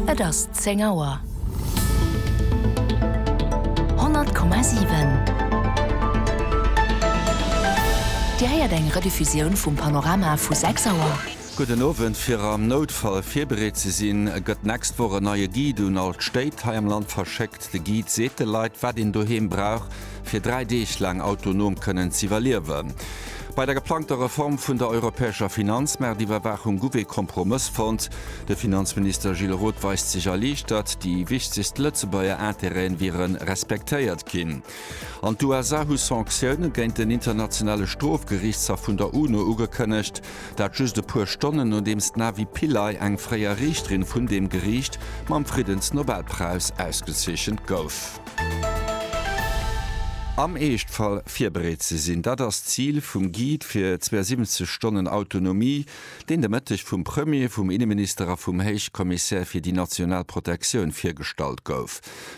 Et ass 10 Auer. 100,7 Dir héiert eng Rediffusioun vum Panorama vu 6 Auer. Gudden Owend, Fir am Noutfall virbereet ze sinn, gëtt d'nächst Woch en neie Guide un all d'Stéit hei am Land verschéckt. De Guide seet de Leit, wat een doheem brauch. fir dräi Deeg laang autonom kënnen z'iwwerliewen. Bei der geplangter Reform vun der europäescher Finanzmaartiwwerwaachung guff ee Kompromëss fonnt. De Finanzminister Gilles Roth weist sech erliichtert, déi wichtegst Lëtzebuerger Intérêt'en wiere respektéiert ginn. An d'USA hu Sanctioune géint den Internationale Strofgeriichtshaff vun der UNO ugekënnegt. Dat just e puer Stonnen nodeems d'Navi Pillay, eng fréier Riichterin vun deem Geriicht, mam Friddensnobelpräis ausgezeechent gouf. Am Eeschtfall virbereet ze sinn, dat ass d'Zil vum Guide fir 72 Stonnen Autonomie, deen de Mëtteg vum Premier, vum Inneminister a vum Héichkommissär fir déi national Protektioun virgestallt gouf.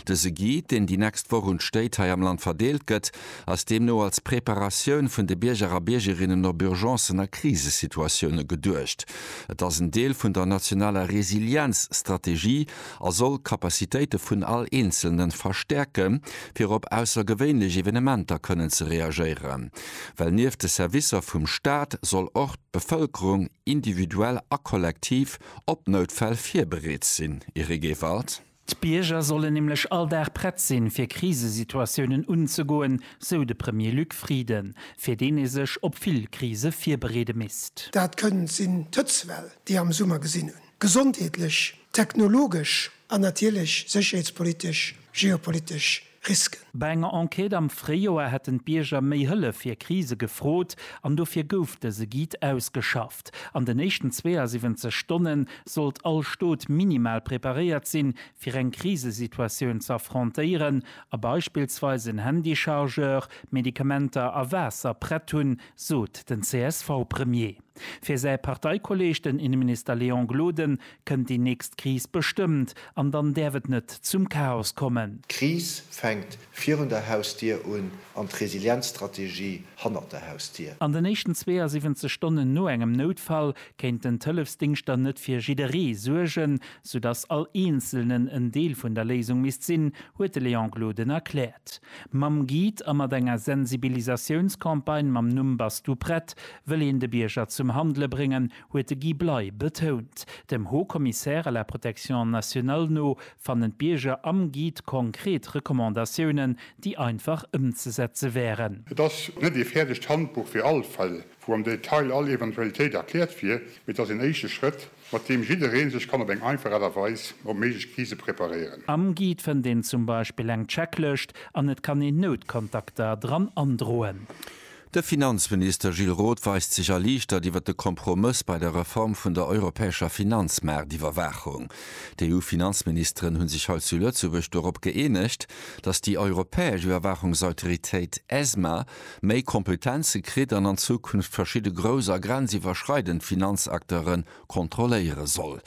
Dëse Guide, deen déi nächst Woch un d'Stéit hei am Land verdeelt gëtt, ass deemno als Preparatioun vun de Bierger a Biergerinnen op Urgencen a Krisesituatioune geduecht. Et ass en Deel vun der nationaler Resilienzstrategie a soll d'Capacitéite vun all Eenzelne verstäerke fir op aussergewéinlech Evenementer kënnen ze reagéieren, well nieft de Servicer vum Staat soll och d'Bevëlkerung individuell a kollektiv op Noutfäll virbereet sinn. Eric Ewald. D'Bierger sollen nämlech all Dag prett sinn, fir Krisesituatiounen unzegoen, sou de Premier Luc Frieden, fir deen ee sech op vill Krise virbereede misst. Dat kënnt sinn d'Hëtztwell, déi am Summer gesinn hunn. gesondheetlech, technologesch an natierlech sécherheetspolitesch, geopolitesch Risken. Bei enger Enquête am Fréijoer hätten d'Bierger méi Hëllef fir Krise gefrot an dofir gouf dëse Guide ausgeschafft. An den éischten 72 Stonne sollt all Stot minimal preparéiert sinn, fir eng Krisesituatioun ze affrontéieren a beispillsweis en Handychargeur, Medikamenter a Waasser prett hunn, sot den CSV-Premier. Fir säi Parteikolleeg, den Inneminister Léon Gloden, kënnt déi nächst Kris bestëmmt, an dann däerf et net zum Chaos kommen. D'Kris fänkt virun der Hausdier un an d'Resilienzstrategie hannert der Hausdier. An den éischten 72 Stonnen no engem Noutfall kéinten d'Hëllefsdingschter net fir jidderee suergen, soudass all Eenzelnen en Deel vun der Léisung misst sinn, huet de Léon Gloden erkläert. Mam Guide a mat enger Sensibilisatiounscampagne mam Numm Bass du prett? wëll een de Bierger zum Handele bréngen, huet de Guy Bley betount. Dem Haut Commissaire à la protection nationale no fannen d'Bierger am Guide konkret Recommandatiounen, déi einfach ëmzesetze wären. Et ass net ee fäerdegt Handbuch fir all Fall, wou am Detail all Eventualitéit erkläert wier, mee et ass een éischte Schrëtt, mat deem jidderee sech kann op eng einfach Aart a Weis op méiglech Krise preparéieren. Am Guide fënnt een zum Beispill eng Checklëscht an et kann een Noutkontakter dran androen. De Finanzminister Gilles Roth weist sech erliichtert iwwer de Kompromëss bei der Reform vun der europäescher Finanzmaartiwwerwaachung. D'EU-Finanzministeren hu sech hei zu Lëtzebuerg dorop gëeenegt, datt déi europäesch Iwwerwaachungsautoritéit ESMA méi Kompetenze kritt an an Zukunft verschidde grouss a grenziwwerschreidend Finanzakteuren kontrolléiere soll.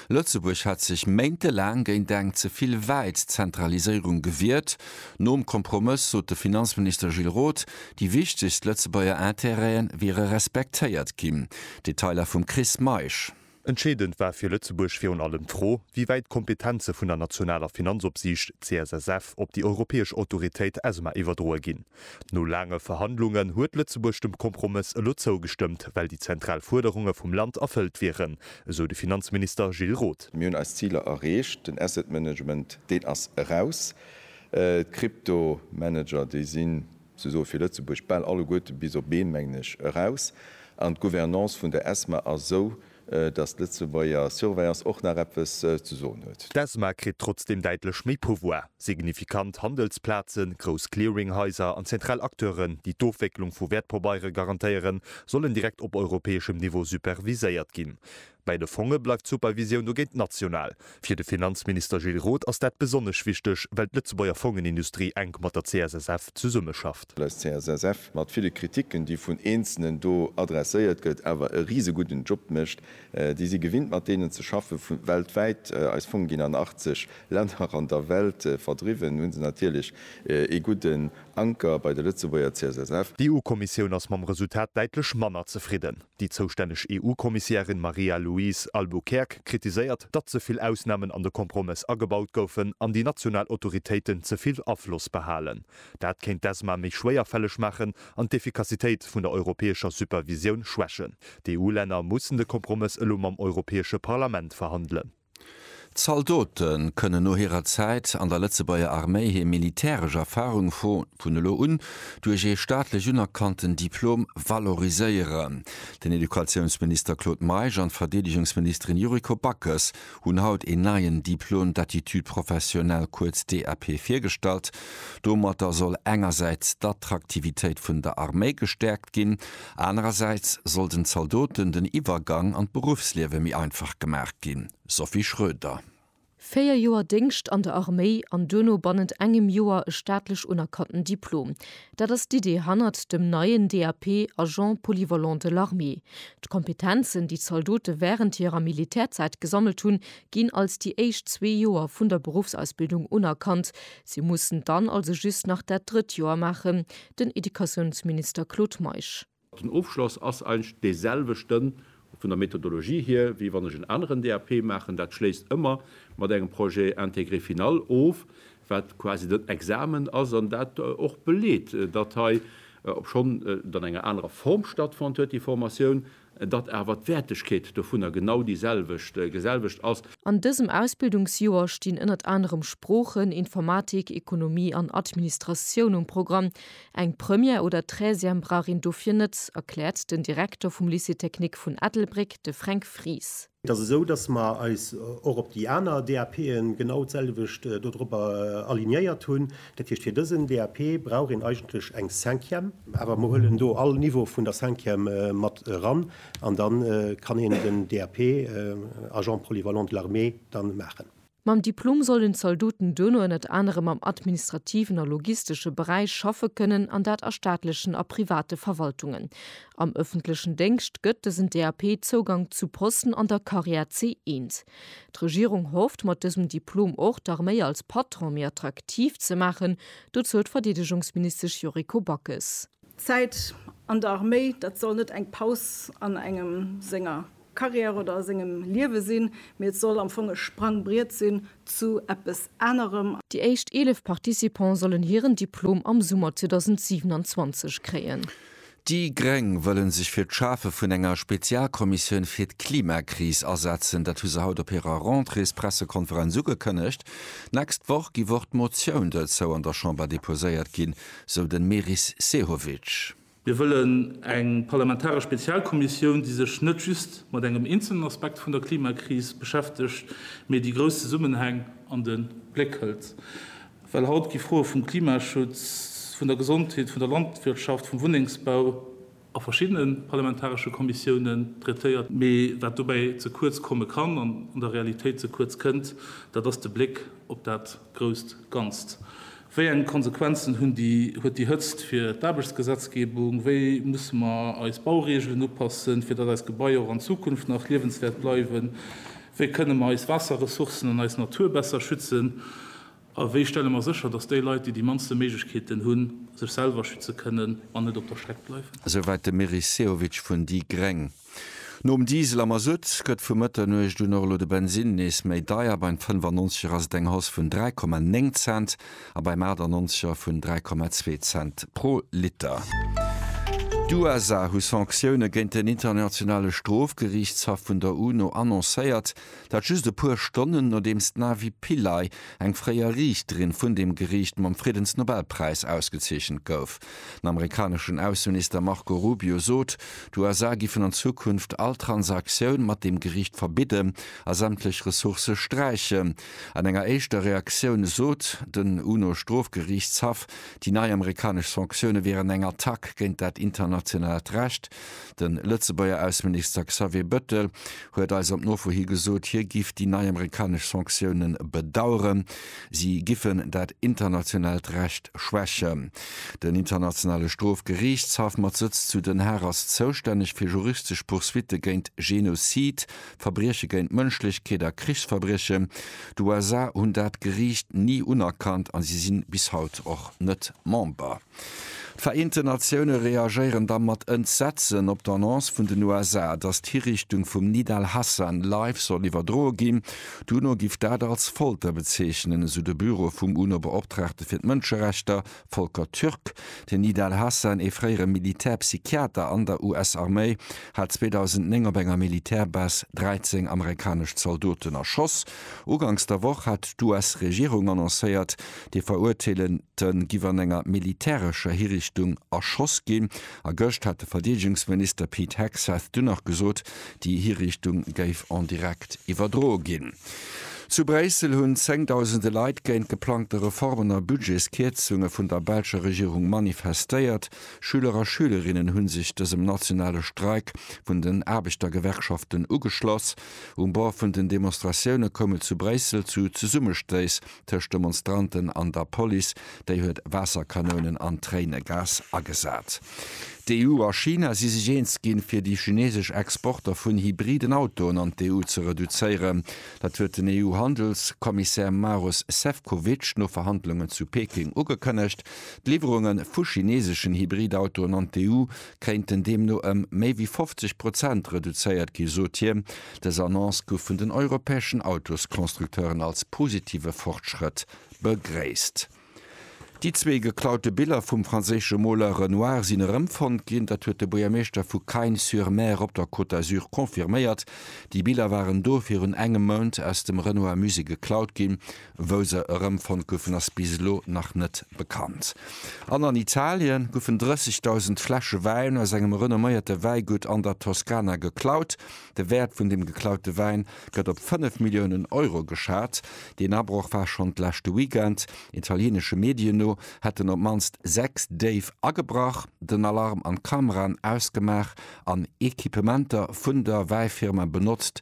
Lëtzebuerg hat sech méintelaang géint eng ze vill wäit Zentraliséierung gewiert. Nom Kompromëss sot de Finanzminister Gilles Roth, déi wichtegst Lëtzebuerger Intérêt'e wiere respektéiert ginn. Detailer vum Chris Meisch. Entscheedend war fir Lëtzebuerg virun allem d'Fro, wéi wäit d'Kompetenze vun der nationaler Finanzopsiicht, CSSF, op déi europäesch Autoritéit, ESMA, iwwerdroe ginn. No laange Verhandlungen huet Lëtzebuerg dem Kompromëss elo zougestëmmt, well déi zentral Fuerderunge vum Land erfëllt wieren, esou de Finanzminister Gilles Roth. Mir hunn eis Ziler erreecht. Den Asset Management, deen ass eraus. D'Kryptomanager, déi sinn sousoe fir Lëtzebuerg bal alleguerte bis op een, mengen ech, eraus. An d'Gouvernance vun der ESMA ass esou, Datt d'Lëtzebuerger Surveillance och nach eppes ze soen huet. D'ESMA kritt trotzdeem däitlech méi Pouvoir. Signifikant Handelsplazen, grouss Clearinghaiser an zentral Acteuren, déi d'Ofwécklung vu Wäertpabeiere garantéieren, sollen direkt op europäeschem Niveau superviséiert ginn. Bei de Fonge bleift d'Supervisioun dogéint national. Fir de Finanzminister Gilles Roth ass dat besonnesch wichteg, well d'Lëtzebuerger Fongenindustrie enk mat der CSSF zesummeschafft. Well eis CSSF mat ville Kriticken, déi vun Eenzelnen do adresséiert gëtt, awer e risegudden Job mécht. Déi si gewinnt, mat deenen ze schaffen, vu weltwäit. Eis Fonge ginn an 80 Länner an der Welt verdriwwen. Hu se natierlech ee gudden Anker bei der Lëtzebuerger CSSF. D'EU-Kommissioun ass mam Resultat däitlech manner zefridden. Déi zoustänneg EU-Kommissiärin Maria-Louise Albuquerque kritiséiert, datt ze vill Ausnamen an de Kompromëss agebaut goufen an déi national Autoritéiten ze vill Afloss behalen. Dat kéint d'ESMA méi schwéierfälleg maachen an d'Effikassitéit vun der europäescher Supervisioun schwächen. D'EU-Länner mussen de Kompromëss elo mam Europäesche Parlament verhandelen. Zaldote kënnen no hirer Zäit an der Lëtzebuerger Arméi hir militäresch Erfarung vun elo un duerch ee staatlech unerkannten Diplom valoriséieren. Den Educatiounsminister Claude Meisch an d'Verdeedegungsministerin Yuriko Backes hunn haut een neien Diplôme d'aptitude professionnelle, kuerz DAP, virgestallt. Domatter soll engersäits d'Attraktivitéit vun der Arméi gestäerkt ginn, Anerersäits soll den Zaldoten den Iwwergang an d'Beruffsliewe méi einfach gemaach ginn, Sophie Schroeder. Véier Joer Déngscht an der Arméi an duerno bannent engem Joer e staatlech unerkannten Diplom, dat ass d'Idee hannert dem neien DAP, Agent polyvalent de l'armée. D'Kompetenzen, déi d'Zaldote wärend hirer Militärzäit gesammelt hunn, ginn als déi éischt zwee Joer vun der Beruffsausbildung unerkannt. Si mussen dann also just nach dat drëtt Joer maachen, den Educatiounsminister Claude Meisch. Den Ofschloss ass eigentlech dee selwechte vun der Methodologie hier, wéi wann ech en aneren DAP maachen. Dat schléisst ëmmer mat engem Projet intégré final of, wat quasi den Examen ass an dat och beleet, datt hei, obschonn et an enger anerer Form stattfonnt huet, déi Formatioun, datt awer d'Wäertegkeet dovunner genau déi selwecht, selwecht ass. An dësem Ausbildungsjoer stinn ënnert anerem Sproochen, Informatik, Ekonomie an Administratioun um Programm. Eng Première oder Treizième brauch een dofir net, erkläert den Direkter vum Lycée technique vun Ettelbréck, de Fränk Fries. Et ass esou, dass mer eis och op déi aner DAPe genau d'selwecht dodrobber alignéiert hunn. Dat heescht, fir dësen DAP brauch een eigentlech eng Cinquième. Awer mer huelen do all Niveau vun der Cinquième mat eran an da kann een den DAP Agent polyvalent de l'armée da maachen. Mam Diplom sollen d'Zaldoten duerno ënnert anerem am administrativen a logistesche Beräich schaffe kënnen, an dat a staatlechen a private Verwaltungen. Am ëffentlechen Déngscht gëtt dësen DAP Zougank zu Posten an der Karriär C1. D'Regierung hofft, mat dësem Diplom och d'Arméi als Patron méi attraktiv ze maachen. Dozou huet d'Verdeedegungsministesch Yuriko Backes. D'Zäit an der Arméi, dat soll net eng Paus an engem senger Karriär oder a sengem Liewe sinn, mee et soll am Fong e Sprangbriet sinn zu eppes anerem. Déi éischt 11 Participants sollen hiren Diplom am Summer 2027 kréien. Déi Gréng wëllen sech fir d'Schafe vun enger Spezialkommissioun fir d'Klimakris asetzen. Dat hu se haut op hirer Rentréespressekonferenz ugekënnegt. D'nächst Woch gi wor d'Motioun dozou an der Chamber deposéiert ginn, sou den Meris Sehovic. Mir wëllen eng parlamentaresch Spezialkommissioun, déi sech net just mat engem eenzelnen Aspekt vun der Klimakris beschäftegt, mee déi grouss Zesummenhäng an de Bléck hëlt. Well haut gi Froe vum Klimaschutz, vun der Gesondheet, vun der Landwirtschaft, vum Wunnengsbau a verschiddene parlamentaresche Kommissiounen traitéiert. Mee wat dobäi ze kuerz komme kann an an der Realitéit ze kuerz kënnt, dat ass de Bléck op dat Grousst Ganzt, Wéi eng Konsequenzen hunn déi, huet déi Hëtzt fir d'Aarbechtsgesetzgebung? Wéi musse mer eis Baureegelen upassen, fir datt eis Gebaier och an Zukunft nach liewenswäert bleiwen? Wéi kënne mer eis Waasserressourcen an eis Natur besser schützen? A wéi stelle mer sécher, datt déi Leit, déi déi mannste Méiglechkeeten hunn, sech selwer schütze kënnen an net op der Streck bleiwen? Esouwäit de Meris Sehovic vun déi gréng. Nom Diesel a Masutt gëtt vu Mëtternuecht un och elo de Bensinn nees méi deier, beim 95 er ass et eng Hausse vun 3,9 Cent a beim 98 er vun 3,2 Cent pro Liter. D'USA hu Sanktioune géint den Internationale Strofgeriichtshaff vun der UNO annoncéiert, dat just e puer Stonnen nodeems d'Navi Pillay, eng fréier Riichterin vun deem Geriicht, mam Friddensnobelpräis ausgezeechent gouf. Den amerikaneschen Ausseminister Marco Rubio sot, d'USA giffen an Zukunft all Transaktioun mat deem Geriicht verbidden a sämtlech Ressourcë sträichen. An enger éischter Reaktioun sot den UNO-Strofgeriichtshaff, déi nei amerikanesch Sanktioune wieren eng Attack géint dat internationaalt Recht. De Lëtzebuerger Ausseminister Xavier Bëttel huet eis op Nofro hi gesot, hie giff déi nei amerikanesch Sanktioune bedaueren. Si giffen dat internationaalt Recht schwächen. Den Internationale Strofgeriichtshaff mat Sëtz zu Den Haag ass zoustänneg fir juristesch Poursuitte géint Genozid, Verbrieche géint d'Mënschlechkeet a Krichsverbriechen. D'USA hunn dat Geriicht ni unerkannt a si si bis haut och net Member. D'Vereenten Natioune reagéieren da mat Entsetzen op d'Annonce vun den USA, datt d'Hiriichtung vum Nid al-Hassan live soll iwwerdroe ginn. D'UNO giff dat als Folter bezeechnen, esou de Büro vum UNO-Beoptraagte fir d'Mënscherechter, Volker Türk. Den Nid al-Hassan, ee fréiere Militärpsychiater an der US-Arméi, hat 2009 op enger Militärbase 13 amerikanesch Zaldoten erschoss. Uganks der Woch hat d'US-Regierung annoncéiert, déi Verurteelen, D'Te giff an enger militärescher Hirichtung erschoss ginn. A gëscht hat de Verdeedegungsminister Pete Hegseth dunn nach gesot, déi Hirichtung géif en direct iwwerdroe ginn. Zu Bréissel hunn zéngdausende Leit géint d'geplangte Reformen a Budgetskierzunge vun der belscher Regierung manifestéiert. Schüler a Schülerinnen hu sech dësem nationale Streik vun den Aarbechtergewerkschaften ugeschloss. Um Bord vun den Demonstratioune koum et zu Bréissel zu Zesummestéiss tëscht Demonstranten an der Police, déi huet Waasserkanounen an Tréinegas agesat. D'EU a China si sech eens ginn, fir déi chinesesch Exporter vun hybriden Autoen an d'EU ze reduzéieren. Dat huet den EU-Handelskommissär Maros Sefcovic no Verhandlungen zu Peking ugekënnegt. D'Liwwerunge vu chineseschen Hybridautoen an d'EU kéinten deemno ëm méi wéi 50 Prozent reduzéiert gi, sot hien. Dës Annonce gouf vun den europäeschen Autosconstructeuren als positive Fortschrëtt begréisst. Déi zwee geklaute Biller vum franséische Moler Renoir sinn erëmfonnt ginn. Dat huet de Buergermeeschter vu Cagnes-sur-Mer op der Côte d'Azur confirméiert. Déi Biller waren do virun engem Mount aus dem Renoir-Musée geklaut ginn. Wou se erëmfonnt goufen, ass bis elo nach net bekannt. An an Italie goufen 30.000 Fläsche Wäin aus engem renomméierte Wäigutt an der Toskana geklaut. De Wäert vun dem geklaute Wäin gëtt op 5 Milliounen Euro geschat. Deen Abroch war schonn d'leschte Weekend. Italieenesche Medien no hätten op d'mannst 6 Déif agebrach, den Alarm an d'Kameraen ausgemaach an Equipementer vun der Wäifirma benotzt,